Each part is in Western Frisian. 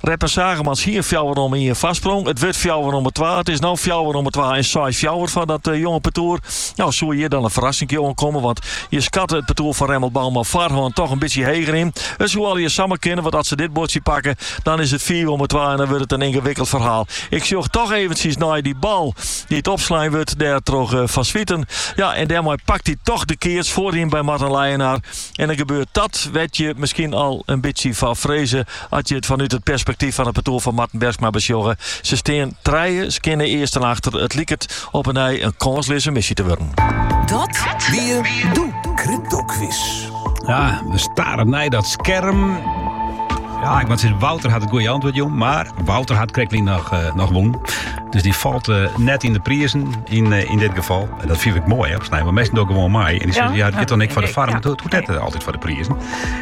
Redmer Zaagemans hie in fjouwer omme ien foarsprong. It wurdt fjouwer omme twa. It is no fjouwer omme twa en seis fjouwer foar dat eh, jonge partoer. No soe hjir dan in ferrassinkje oankomme, want je skatte it partoer fan Remmelt Bouma foarhân toch in bytsje heger yn. It soe allegear samar kinne, want as se dit buordsje pakke, dan is it fiif omme twa en dan wurdt it in yngewikkeld ferhaal. Ik sjoch toch eventjes nei dy bal dy't opslein wurdt dêr troch eh, Van Zwieten. Ja, en dêrmei pakt hy toch de keats foaryn by Marten Leijenaar. En dan gebeurt dat wêr't je miskien al in bytsje foar freze. As je it fanút it perspektyf fan it partoer fan Marten Bergsma besjogge, se stean trije skjinne earsten achter, it liket op 'e nij in kânsleaze misje te wurden. Dat wie de Cryptoquiz. Ja, we staren nei dat skerm. Ja, ik moat sizze, Wouter hat it goeie antwurd, jong. Mar Wouter hat krektlyn noch, uh, noch wûn. Dus dy falt eh, net yn de prizen yn, eh, yn dit gefal. En dat fyn ik moai, hè, op snein. Want minsken dogge gewoan mei. En dy sizze, ja, dit doch ik foar de foarm. Hoecht net altyd foar de prizen.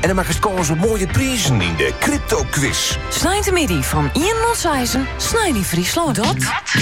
En dan makkest kâns op moaie prizen yn de crypto-quiz. Sneintemiddei fan 1 oant 6 Snein yn Fryslân. Dat.